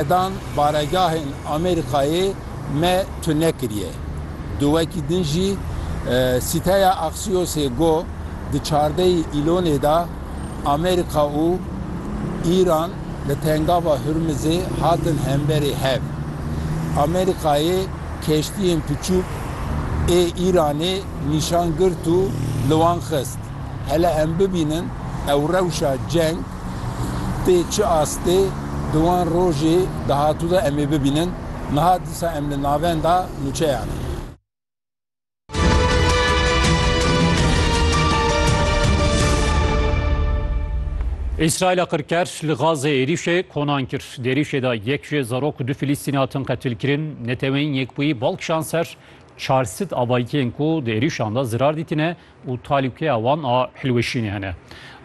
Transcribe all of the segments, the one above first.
Sedan baregahên Amerîkayê me tune kiriye. Di wekî din jî sîteya Axiosê got, di çardeyî Îlonê de Amerîka û Îran li Tengava Hurmizê hatin hemberî hev. Amerîkayê keştiyên piçûk ê Îranê nîşan girt û li wan xist. Hele em bibînin ew rewşa ceng tê çi astê di wan rojê dahatû de em ê bibînin, niha dîsa em li navenda nûçeyan in. Îsraîla qirker li Gazê êrîşê konan kir. Di êrîşê de yek ji zarok û du Filîstînî hatin qetilkirin. Neteweyên Yekbûyî bal kişand ser çar sed avayîtiyên ku di êrîşan de zirar dîtine û talûkeya wan a hilweşînê hene.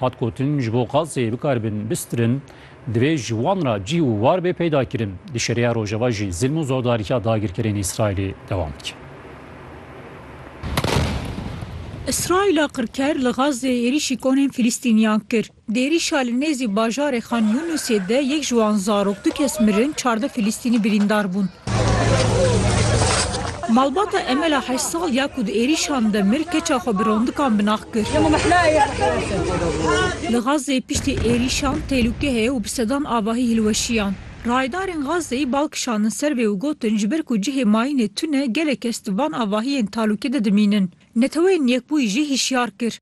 Hat gotin, ji bo gazê bikaribin bistirin, divê ji wan re cî û war bê peydakirin. Di Şeriya Rojava jî zilm û zordariya dagirkerên Îsraîlê dewam dike. Îsraîla qirker li Gazê êrîşî konên Filistîniyan kir. Dêrî Şalî nêzî bajarê Xan Yûnusê de yek ji wan zarok, du kes mirin, çardeh Filîstînî birîndar bûn. Malbata Emela heşt sal ya ku di êrîşan de mir keça xwe bi rondikan binax kir. Li Xazzeyê piştî êrîşan têlûke heye û bi sedan avahî hilweşiyan. Rayedarên Xazzeyî bal kişandin ser vê û gotin ji ber ku cihê mayînê tune gelek kes di van avahiyên talûke de dimînin. Neteweyên Yekbûyî jî hişyar kir.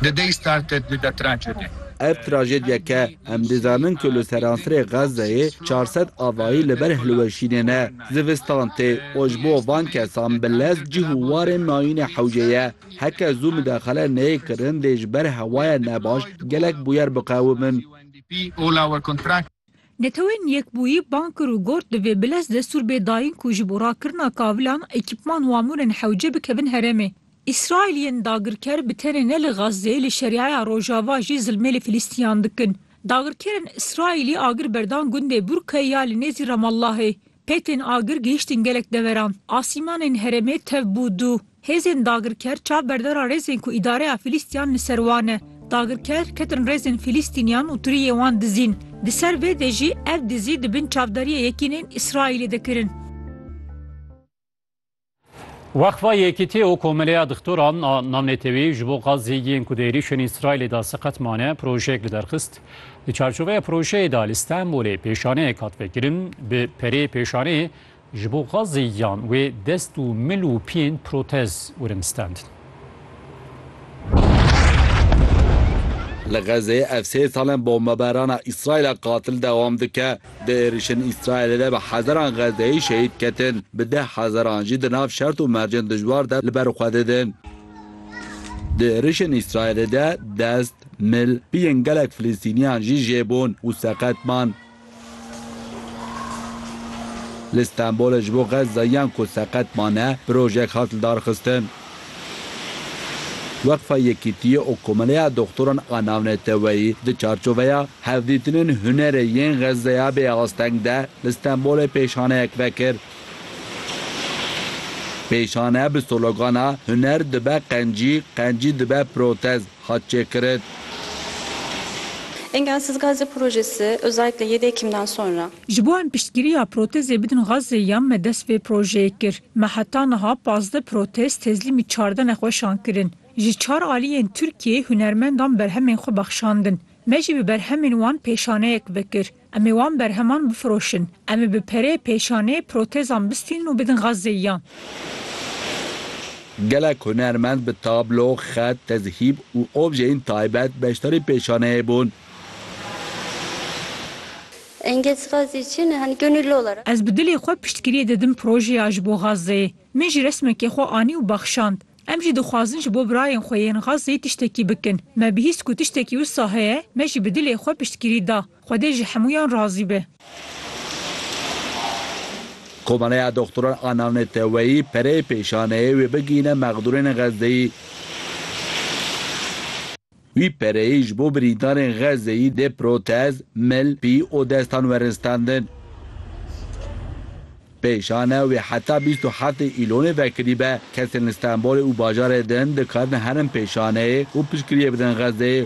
The day started with a tragedy. Ev trajedyeke em dizanin ku li seransirê Xezzeyê çar sed avayî li ber hilweşînê ne. Zivistan tê û ji bo van kesan bi lez cih û warên nayîne hewce ye. Heke zû midexele neyê kirin dê ji ber hewaya nebaş gelek bûyer biqewimin. Netewên Yekbûyî bang kir û got, divê bi lez destûr bê dayîn ku ji bo rakirina kavilan, ekîpman û amûrên hewce bikevin herêmê. Îsraîl yên dagirker bi tenê ne li Xazzeyê li Şeriaya Rojava jî zilmê li Filîstîyan dikin. Dagirkerên Îsraîlî agir berdan gundê Burke ya li nêzî Ramallahê. Petên agir gihîştin gelek deveran. Asîmanên herêmê tev bû dû. Hêzên dagirker çav berdara rêzên ku îdareya Fîlîstîyan li ser wan e. Dagirker ketin rêzên Fîlîstînîyan û tiriyê wan dizîn. Di ser vê de jî ev dizî di bin çavdariyê yekînên Îsraîlê de kirin. Weqfa Yekîtî û Komeleya Dixtoran a Namnetewî ji bo Gazî yên ku di êrîşên Îsraîlê de siqet mane projeyek li derxist. Di çarçoveya projeyê de li Stenbolê pêşaneyek hat vekirin. Bi perê pêşaneyê ji bo Gazî yan wê dest û mil û piyên protez wirin stendin. Li Xezeyê ev sê sal in bombeberana Îsraîla qatil dewam dike. Di êrişên Îsraîlê de bi hezaran Xezeyî şehîd ketin, bi deh hezaran jî di nav şert û mercên dijwar de li ber xwe didin. Di êrişên Îsraîlê de dest, mil, piyên gelek Filistîniyan jî jê bûn û seqet man. Li Stenbolê ji bo Xezayiyan ku seqet mane projeyek hat lidarxistin. Weqfa Yekîtiyê û Komeleya Doxtoran a Navneteweyî di çarçoveya Hevdîtinên Hunerê yên Xezaya Bêasteng de li Stenbolê pêşaneyek vekir. Pêşane bi sologana Huner dibe qencî, qencî dibe protez. hat çêkirin. Engelsiz Gazze projesi özellikle yedi Ekim'den sonra. Ji bo em piştgiriya protezê bidin Gazze'yê ya me dest vê projeyê kir. Me heta niha pazdeh protez tezlîmî çardeh nexweşan kirin. Ji çar aliyên Tirkiyeyê hunermendan berhemên xwe bexşandin. Me jî bi berhemên wan pêşaneyek vekir. Em ê wan berheman bifiroşin. Em ê bi perê, pêşanê, protezan bistînin û bidin Xazzeyîyan. Gelek hunermend bi tablo, xet, tezhîb û objeyên taybet beşdarî pêşaneyê bûn. Engelsazî çi ne? Hani gönüllü olarak. Ez bi dilê xwe piştgiriyê didim projeya ji bo Xazzeyê. Min jî resmekê xwe anî û baxşand. Em jî dixwazin ji bo birayên xwe yên Xazzeyê tiştekî bikin. Me bihîst ku tiştekî wisa heye, me jî bi dilê xwe piştgirî da. Xwedê ji hemûyan razî be. Komeleya Doxtoran a Navneteweyî pereyê pêşaneyê wê bigihîne mexdûrên Xezzeyî. Wî pereyê ji bo birîndarên Xezzeyî dê protez, mil, pî û destan werin standin. Pêşane wê heta bîst û heftê Îlonê vekirîbe, kesên li Stenbolê û bajarê din dikarin herin pêşaneyê û piştgiriyê bidin Xezzeyê.